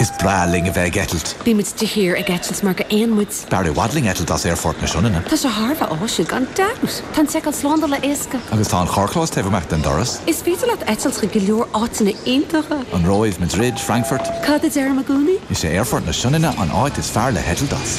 Is breá linn a bheith ag eitilt. Bíonn muid de shíor ag eitilt mar gur éin muid. B'fhearr i bhfad linn eitilt as Aerfort na Sionainne. Tá sé thar a bheith áisiúil, gan dabht. Tá an tseiceáil slándála éasca. Agus tá an carrchlós taobh amuigh den doras. Is féidir leat eitilt chuig go leor áiteanna iontacha. An Róimh, Madrid, Frankfurt. Cad a deirim i gcónaí? Is é Aerfort na Sionainne an áit is fearr le heitilt as.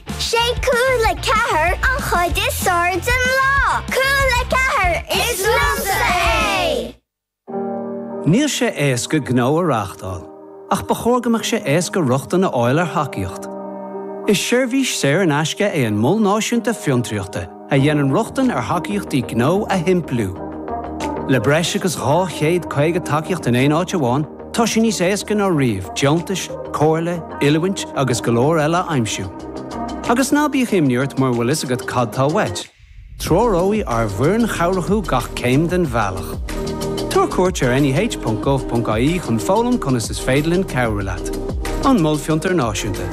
Sé Cúla4 an chuid is fearr den lá. Cúla4, is liomsa é! Níl sé éasca gnó a reáchtáil, ach ba chóir go mbeadh sé éasca rochtain a fháil ar thacaíocht. Is seirbhís saor in aisce é an Mol Náisiúnta Fiontraíochta. a dhéanann rochtain ar thacaíochtaí gnó a shimpliú. Le breis agus 250 tacaíocht in aon áit amháin, tá sé níos éasca ná riamh deontais, comhairle, oiliúint agus go leor eile a aimsiú. Agus ná bíodh imní ort mura bhfuil fhios agat cad tá uait, treoróidh ár bhfoireann chabhrach thú gach céim den bhealach Tabhair cuairt ar neh.gov.ie chun foghlaim conas is féidir linn cabhrú leat. An Mol Fiontar Náisiúnta.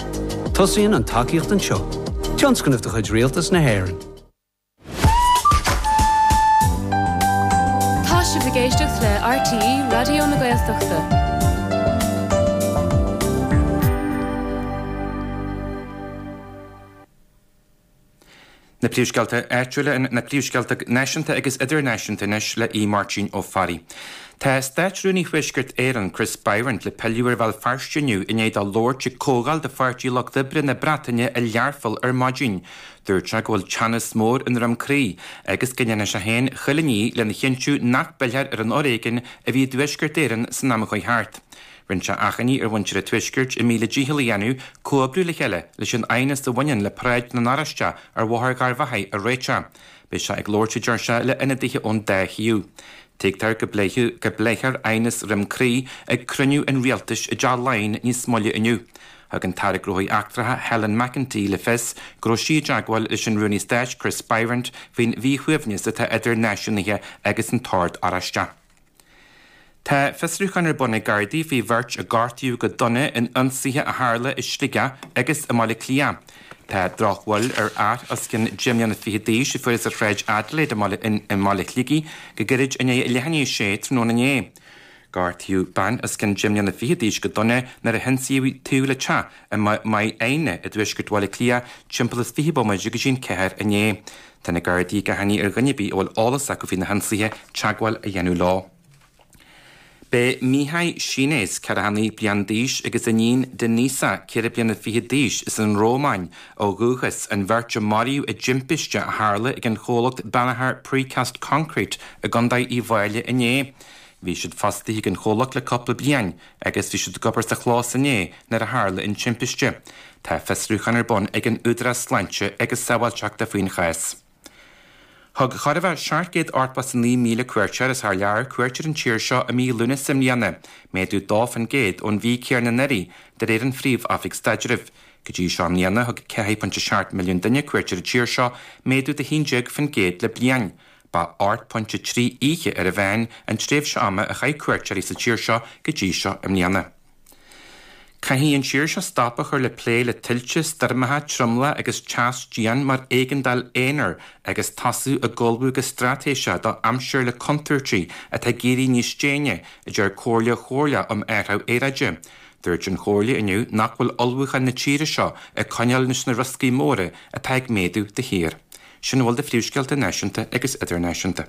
Tosaíonn an tacaíocht anseo. Tionscnamh de chuid Rialtas na hÉireann. Tá sibh ag éisteacht le RTÉ Raidió na Gaeltachta. Na Príomhscéalta Áitiúla, Na Príomhscéalta Náisiúnta agus Idirnáisiúnta anois le Aodh Máirtín Ó Fearraigh. Tá Státrúnaí Thuaisceart Éireann, Chris Bryant, le pilleadh ar Bhéal Feirste inniu i ndiaidh dó labhairt ag comhdháil de Pháirtí Lucht Oibre na Breataine i Learpholl ar maidin. Dúirt sé go bhfuil teannas mór i nDroim Crí agus go ndéanfaidh sé féin chuile ní lena chinntiú nach bpillfear ar an fhoréigean a bhí i dTuaisceart Éireann san am a chuaigh thart. Rinne sé achainí ar mhuintir an Tuaiscirt a míle dícheall a dhéanamh comhoibriú le chéile leis an aighneas a bhaineann le Paráid na nOráisteach ar Bhóthar Gharbhachaidh a réiteach. Beidh sé ag labhairt, a deir sé, le ionadaithe ón dá thaobh. Tuigtear go bpléifidh, go bpléifear aighneas Dhroim Crí ag cruinniú an rialtais i dTeach Laighean níos moille inniu. Thug an tAire Gnóthaí Eachtracha Helen McEntee le fios go raibh sí i dteagmháil leis an Rúnaí Stáit Chris Bryant faoin mhíshuaimhneas atá idir náisiúnaithe agus an tOrd Oráisteach. Tá fiosrúchán ar bun ag Gardaí faoi bheirt a gortaíodh go dona in ionsaithe a tharla i Sligeach agus i mBaile Átha Cliath. Tá drochbhail ar fhear os cionn deich mbliana fichead d'aois a fuarthas ar Shráid Adelaide i mBaile Shligigh go gairid i ndiaidh a leath i ndiaidh a sé tráthnóna inné. Gortaíodh bean os cionn deich mbliana fichead d'aois go dona nuair a hionsaíodh í taobh le teach i Maigh Éine i dtuaisceart Bhaile Átha Cliath timpeall is fiche bomaite go dtí an ceathair inné. Tá na Gardaí ag achainí ar dhuine ar bith a bhfuil eolas acu faoi na hionsaithe teagmháil a dhéanamh leo. B'iad Mihai Shines, ceathracha naoi bliain d'aois, agus a iníon Denisa, ceithre bliana fichead d'aois, as an Rómáin, ó dhúchas, an bheirt a maraíodh i dtimpiste a tharla ag an chomhlacht Banagher Precast Concrete i gContae Uíbh Fhailí inné. Bhí siad fostaithe ag an chomhlacht le cúpla bliain, agus bhí siad ag obair sa chlós inné nuair a tharla an timpiste. Tá fiosrúchán ar bun ag an Údarás Sláinte agus Sábháilteachta faoin chás. Thug chóir a bheith 789,000 cuairteoir as thar lear cuairt ar an tír seo i mí Lúnasa i mbliana, méadú 2% ón mhí céanna anuraidh, de réir an Phríomh-Oifig Staidrimh. Go dtí seo i mbliana, thug 4.7 milliún duine cuairt ar an tír seo, méadú de 11% le bliain. Ba ocht pointe trí oíche ar an mheán an tréimhse ama a chaith cuairteoirí sa tír seo go dtí seo i mbliana. Caithfidh an tír seo stop a chur le plé le tuilte, stoirmeacha, triomaigh agus teas dian mar éigeandáil aonair agus tosú ag ullmhú go straitéiseach do aimsir le contúirtí atá ag éirí níos déine, a deir Comhairle Chomhairleach um Athrú Aeráide. Dúirt an Chomhairle inniu nach bhfuil ullmhúcháin na tíre seo ag coinneáil leis na rioscaí móra atá ag méadú de shíor. Sin a bhfuil de phríomhscéalta náisiúnta agus idirnáisiúnta.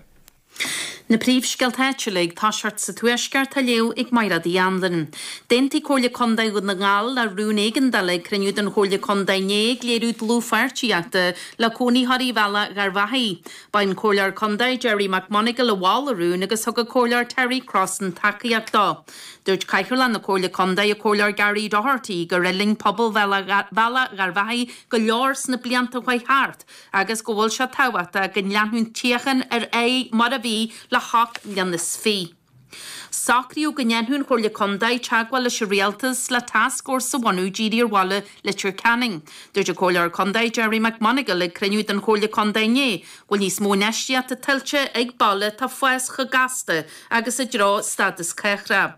Na príomhscéalta áitiúla ag toiseacht sa Tuaisceart á léamh ag Maighréad Uí Anluain. D'aontaigh Comhairle Contae Dhún na nGall le rún éigeandála ag cruinniú den Chomhairle Contae inné ag léiriú dlúthpháirtíochta le cónaitheoirí Bhealach Gharbhachaidh. Ba é an Comhairleoir Contae Gerry McMonagle a mhol an rún agus thug an Comhairleoir Terry Crossan tacaíocht dó. Dúirt Cathaoirleach na Comhairle Contae, an Comhairleoir Gary Doherty, gur fhulaing pobal Bhealach Gharbhachaidh go leor sna blianta a chuaigh thart agus go bhfuil sé tábhachtach go leanfadh an tsíocháin ar aghaidh mar a bhí le hocht mbliana is fiche. Socraíodh go ndéanfadh an Chomhairle Contae teagmháil leis an Rialtas le tascfhórsa a bhunú dírithe ar bhaile Leitir Ceanainn. Dúirt an Comhairleoir Contae, Gerry McMonagle, ag cruinniú den Chomhairle Contae inné, go bhfuil níos mó infheistíochta tuillte ag baile atá ag fás chomh gasta agus i dtreo stádas cathrach.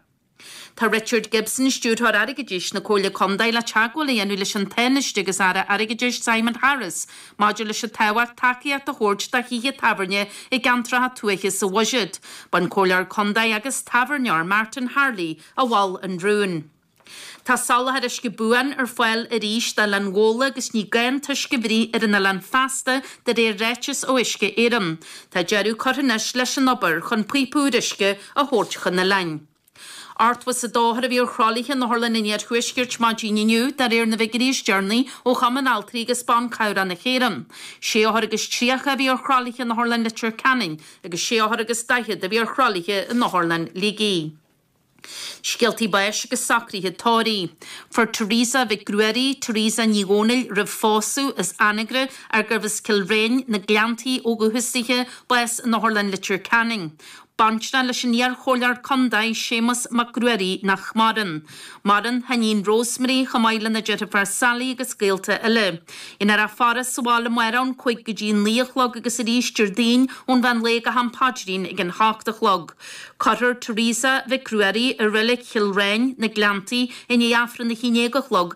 Tá Richard Gibson, Stiúrthóir Airgeadais na Comhairle Contae, le teagmháil a dhéanamh leis an Tánaiste agus Aire Airgeadais Simon Harris maidir leis an tábhacht tacaíocht a thabhairt do thithe tábhairne i gceantracha tuaithe sa bhuiséad. B'é an Comhairleoir Contae agus tábhairneoir Martin Harley a mhol an rún. Tá soláthar uisce buan ar fáil arís d'Oileán Ghabhla agus ní gá an t-uisce a bhruith ar an oileán feasta de réir ráiteas ó Uisce Éireann. Tá deireadh curtha anois leis an obair chun píopa úr uisce a thabhairt chun an oileáin. Ochtó is a dó othar a bhí ar thralaithe in otharlanna an Iarthuaiscirt maidin inniu, de réir na bhfigiuirí is deireanaí ó Chumann Altraí agus Ban Cabhrach na hÉireann. Sé othar agus tríocha a bhí ar thralaithe in Otharlann Leitir Ceanainn agus sé othar agus daichead a bhí ar thralaithe in Otharlann Shligigh. Scéaltaí báis agus socruithe tórraimh. Fuair Teresa Mhic Ruairí, Teresa Ní Dhomhnaill roimh phósadh, as Anagaire ar gurbh as Cill Riáin, na Gleanntaí ó dhúchas dithe, bás in Otharlann Leitir Ceanainn. Baintreach leis an iar-chomhairleoir contae, Séamus Mac Ruairí, nach maireann. Maireann a hiníon Rosemary, chomh maith lena deirféar Sally agus gaolta eile. Déanfar a faire sa bhaile amárach ón cúig go dtí a naoi a chlog agus arís Déardaoin ón mheán lae go ham paidrín ag an hocht a chlog. Cuirfear Teresa Mhic Ruairí i Reilig Chill Riáin, Na Gleanntaí, i ndiaidh Aifreann a haon déag a chlog,